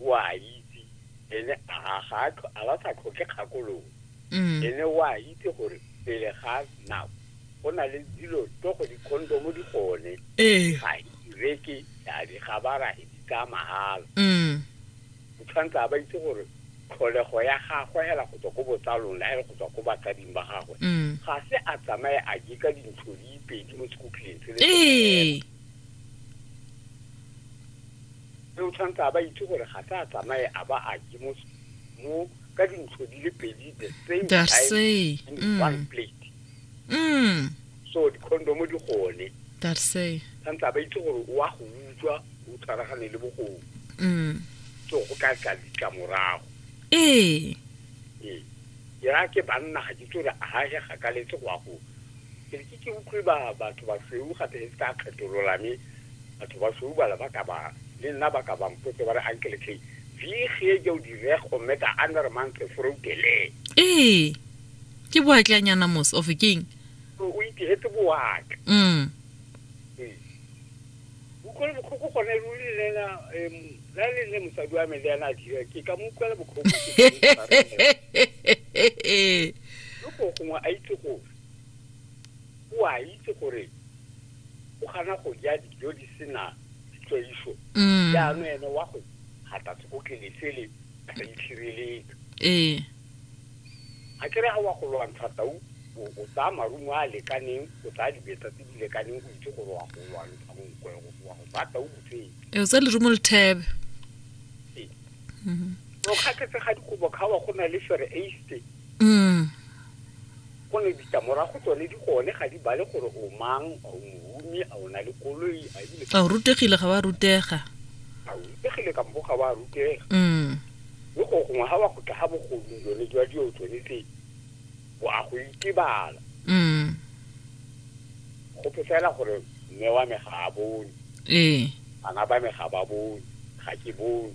o a itse ene a ga a ba sa tlhoke kgakololo mm. ene o a itse gore pele ga nako go na le dilo to go dikhondomo di gone ee. ga ireke a di gabara e di tsaya mahala mm. o tshwanetse a ba itse gore tlholego ya gagwe hela go tswa ko botsalong la ele go tswa ko batsading ba gagwe mm. ga se a tsamaye a je ka dintsho di pedi mo sekhutleng se le ee. mme o tshwanetse a ba itse gore ga se a tsamaye a ba a je mo mo ka dintsho di le pedi the same The time same, in mm. one plate mm so dicondomo di gone that say tshwanetse a ba itse gore o a go utswa o tshwaragane le bogodu mm so go ka tla ditlamorago ee ee ke raya ke banna ga ke itse gore a ga ge gakaletse go ya go Ke re ke ke utlwe ba batho ba sweu gape le se ka kgetolola me batho ba sweu bala ba ka ba le nna ba ka ba mpotse ba re ankele tlhe vi ge ja o direg o meta ander mantle foroutele ee ke boatlanyana mos of keng o itigetse boaka mm utlwele botlhoko gone ruri le ena la le nne mosadi wa me le ena a dira ke ka mo utlwela botlhoko ke ka mo tshwarela. yo go gongwe a itse go o a itse gore o kgana go ja dijo di sena ditlwaiso mm. jaanong ene wa go gata sekotlelesele a sa itshireletse ee ga kere ga wa go lwantsha tau o tsaya marumo a lekaneng o tsaya dibetsa tse di lekaneng o itse gore wa go lwantsha monkwe wa go bata o botsee o tsa lerumo lethebe ee. mm-hmm. o kgatlhetse ga dikobo kgawa go na le fere aste Gonne ditlamorago tsone di gone ga di bale gore o mang, a o mohumi, a o na le koloi, a ebile a o rutegile ga wa rutega a o rutegile kampo ga wa rutega. mm. Mme go gongwe ga wa go tla ga bogodung jone jwa dio tsone tse bo a go itebala. mm. Go pefela gore mme wa me ga a bone, ee bana ba me ga ba bone, ga ke bone.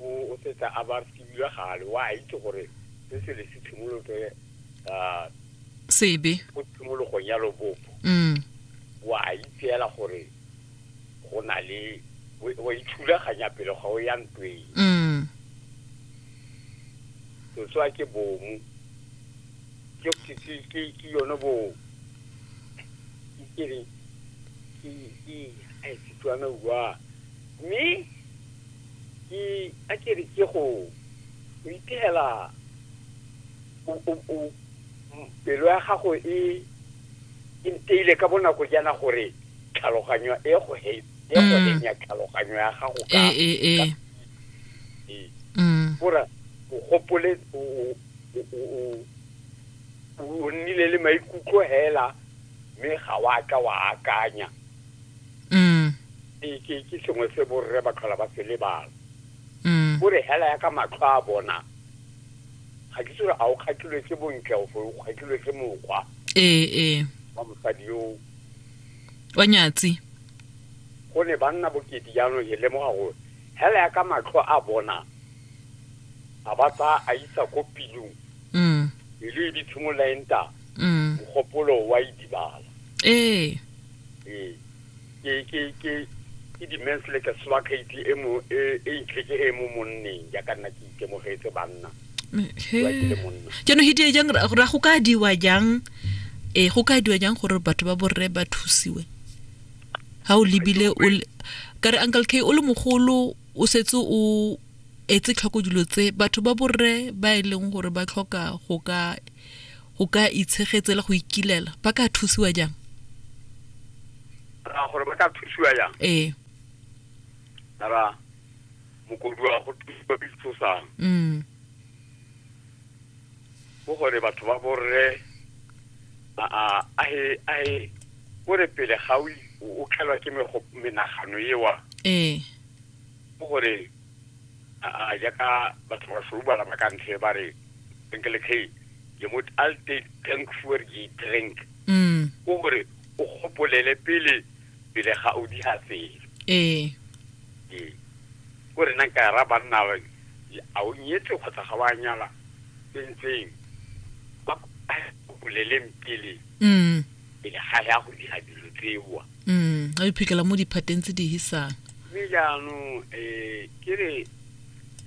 O o setse a ba fiwa gale, wa itse gore se se le se tshimolotse ka sebe go tshimologong ya lobopo. Mm. Wa itseela gore go na le wa ithulaganya pele ga o ya ntweng. Mm. Setswa ke bomu. Ke ke ke ke ke yone bo ke re ke ke ai Setswana wa mme Ke a ke re ke go o ipegela pelo ya gago e e nteile ka bonako jaana gore tlhaloganyo e go he e go mm. henya tlhaloganyo ya gago ka e e e mm. gore o gopole o o nnile le maikutlo hela mme ga wa ka wa akanya Mm. ke ke- ke sengwe se borre ba tlhola ba se lebala Mm. o re hela ya ka matlho a bona ga ke tsore a o kgatlhilwe ke bontle o fo o kgatlhilwe ke mokgwa ee ee wa mosadi yo wa nyatsi go ne ba nna bokete jaanong e lemoga gore hela ya ka matlho a bona a ba tsaya a isa ko pilong Mm. pelo e di tshimolola e nta Mm. mogopolo wa e dibala ee ee ke ke ke ke di-mens le ka swakgaiti e mo e e itlheke e mo monneng jaaka nna ke itemogetse banna Wa ke le monna. jaanong he die jang ra ra go ka diwa jang ee go ka diwa jang gore batho ba borre ba thusiwe ga o lebile o le- ka re uncle k o le mogolo o setse o etse tlhoko dilo tse batho ba borre ba e leng gore ba tlhoka go ka go ka itshegetse le go ikilela ba ka thusiwa jang ra gore ba ka thusiwa jang ee ra mokoduwa go thusiwa ke ditshosang mm. go gore batho ba borre a he gore pele ga o tlhelwa ke menagano ewa ee go gore a jaaka batho ba soubala ba ka ntlhe ba re enkele khe je mot alte tank for je drink mm o gore o gopolele pele pele ga o di hafele eh ee ko re nang ka ra banna ba a o nyetse kgotsa ga wa nyala tsentseng ba gopoleleng pele mm pele ga ya go dira dilo tsewa mm a iphitlhela mo diphateng tse di hisang mme jaanong um eh, ke re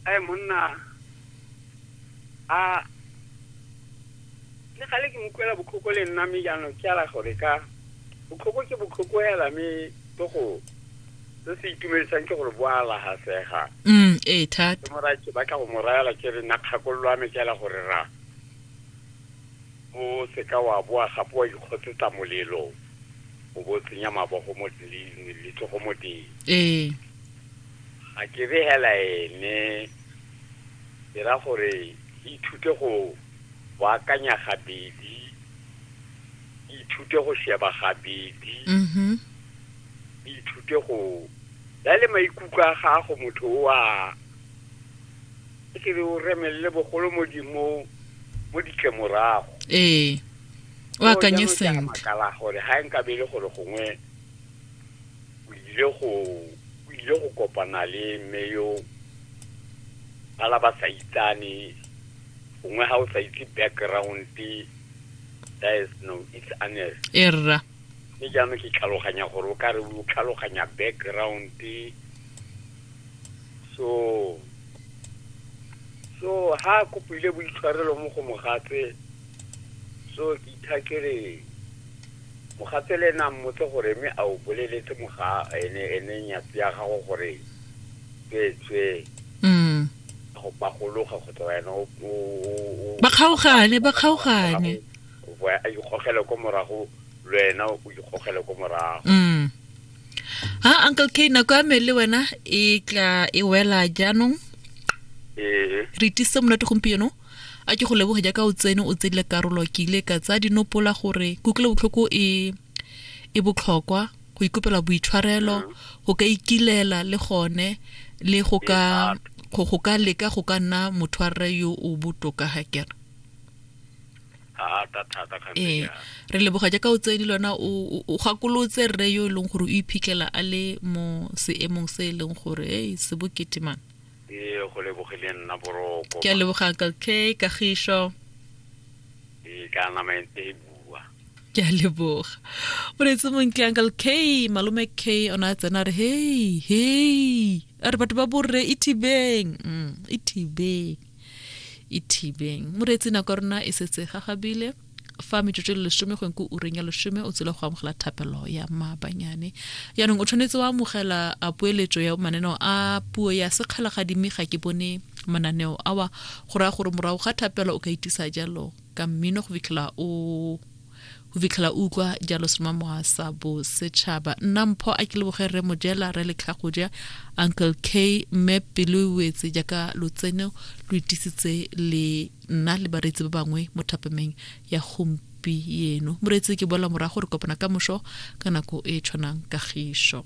ae monna a le gale ke mokwela botlhoko le nna mme jaanong ke ala gore ka botlhoko ke botlhoko hela mme ke go se se itumedisang ke gore bo a lagasega mm ee thata ke mora ke batla go mo rayela ke re nna kgakololo ya me ke ala gore ra O se ka wa boa gape wa ikgotsetsa molelo, o bo tsenya mabogo mo letsogo mo teng. Ee. Ga ke re hela ene, dira gore ithute go baakanya gabedi, ithute go sheba gabedi, mm-hmm. ithute go ya le maikutlo a gago motho o a e ke re o remelele bogolo mo di mo mo ditlemorago ee o akanye sentle makala gore ha e nka bele gore gongwe o ile go o ile go kopana le mme yo bala ba sa itsane gongwe ha o sa itse background that is no it's honest erra mme jaanong ke tlhaloganya gore o ka re o tlhaloganya background so so ha kopile boitshwarelo mo go mogatse so ke ithakere mogatse le nang motse gore mme a o boleletse moga ene ene nyatsi ya gago gore tswetswe mm go pagologa kgotsa wena o- o- o- o- ba kgaogane ba kgaogane o ikgogele ko morago le wena o ikgogele ko morago mm ha uncle k nako ya me le wena e tla e wela jaanong ee re itise monate gompieno a ke go leboge jaaka o tsene o tsedile karolo ke ile ka tsaya dinopola gore kutlwelo botlhoko e e botlhokwa go ikopela boitshwarelo mm. go ka ikilela le gone le go ka go ka leka go ka nna motho wa rre yo o botoka ga kere ee re leboga jaaka o tsedi lona o gakolotse rre yo e leng gore o iphitlhela a le mo seemong se e leng gore e se bokete man ee go lebogile nna boroko ke a leboga uncle k kagišo ee ka nama e ntse e bua ke a leboga o retse montle uncle k malome k ona a tsena re hei hei a re batho ba borre e thibeng mm, e thibeng e thibeng moreetsi nako ya rona e setse gagabile fa metsotso le lesome go nko ureng ya lesome o tsile go amogela thapelo ya maabanyane yaanong o tshwanetse wa amogela a poeletso ya mananeo a puo ya sekgalagadi mme ga ke bone mananeo awa go raya gore morago ga thapelo o ka itisa jalo ka mmino go fitlhela o go fitlhela o utlwa jalo semamoa sa bosetšhaba nna mpho a ke leboge re mojela re letlhago ja uncle k mme pelo e wetse jaaka lotseno lo itisitse le nna le bareetsi ba bangwe mo thapameng ya gompieno moreetsi ke bola morago re kopana ka moso ka nako e tshwanang kagišo